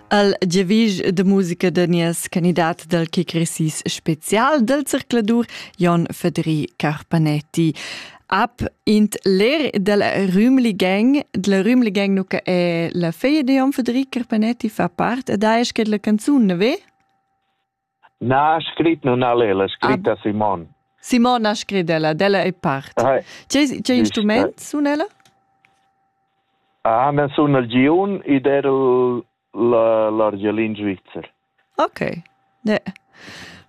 Al giavisch da musica da nies candidat dal kick resis special del zircladur Jon Fedri Carpanetti. Ab int ler del Rümli Gang, della Rümli Gang nu che è la feglia di Jon Fedri Carpanetti fa part ed ha esch la canzun, ne ve? Na ha scrit nun al el, ha scrit a Simon. Simon ha scrit ella, d'ella è part. Tge instrument sun ella? Ah, na sun el giun ed er l'argelin svizzer. Ok. Ne.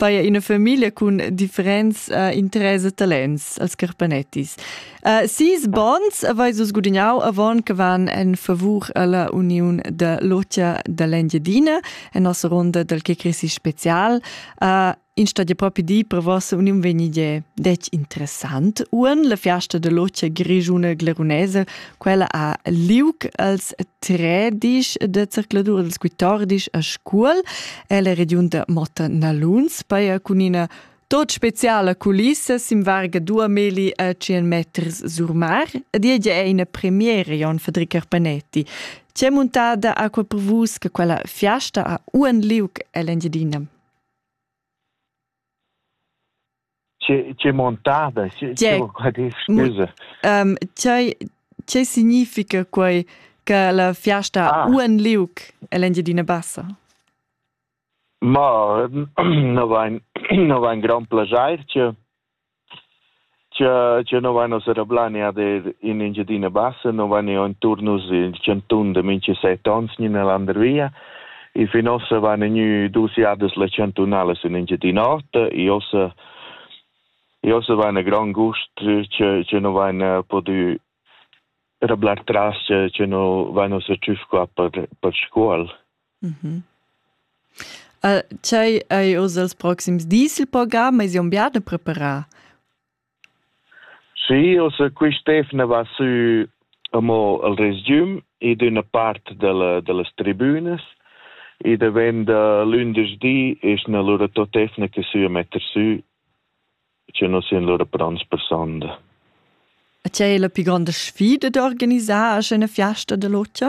Paia ina famiglia cun differents uh, interess e talents als carpanettis. Uh, sis bons avais vus gudignau avon che van en favur alla uniun de Lotia dall'Engiadina en nossa ronda dal che crisi special. Uh, in stad propi di per vossa uniun venide dec interessant. Uan la fiasta de Lotia grigiuna glerunese, quella a Liuc als tredisch de circladur als quittordisch a Scuol, e la region de Motta Naluns, paia cunina Tot speciala culissa simvarga dua meli a 100 meters sur mar ed ella è ina premiera Jon Federic Carpanetti. C'è montada acqua per vus che quella fiasta a Uan Liuc ell'Engiadina? C'è montada? Scusa. Um, Che significa quai che la fiasta ah. Uan Liuc ell'Engiadina Bassa? Ma no vain no vain grand plaschair cha cha cha no vain ossa rablanià d'eir in Engiadina Bassa, no vain eau inturn nus il chantun da mincha set ons gnü üna landervia e fin ossa vain gnü dus jadas las chantunalas in Engiadina Ota e ossa e ossa vain a grand gust cha cha no vain pudü rablar tras cha cha no vain ossa tschüf qua per per Scuol. Tgei ei oz els proxims dis il program? Eis jeu bia da preparar? Sì, also quest'efna va sü amo al resgiüm ed üna part della, dellas tribünas e davenda lündeschdi esna lura tot'efna che sü a metter sü, che non sian lura pronts per sonda. E c'è la più grande sfida d'organisar a scena fiasta dell'Otja?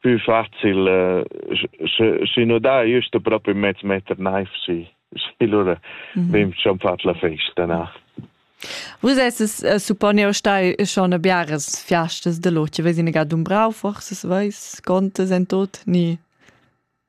più facil eh, si no da just proprio mezzo meter knife si si lura mhm. vem schon fat la festa na Vus es es eh, supponio stai schon a biares fiastas de loche, ves in ga dumbrau forse, veis, contes en tot, ni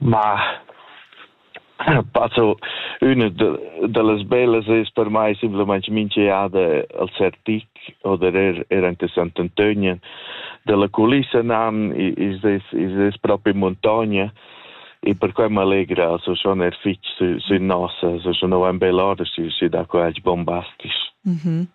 Ma passo üna da las bellas es per mai simplamaing minch'eada al Sertic oder eir eir ante Sant'Antönien. Da la culissa nan i's es i's es propi muntogna e perquai m'allegra so schon eir fich sü sün nossa, so schon ho ün bel or sü sü da qua, bombastic.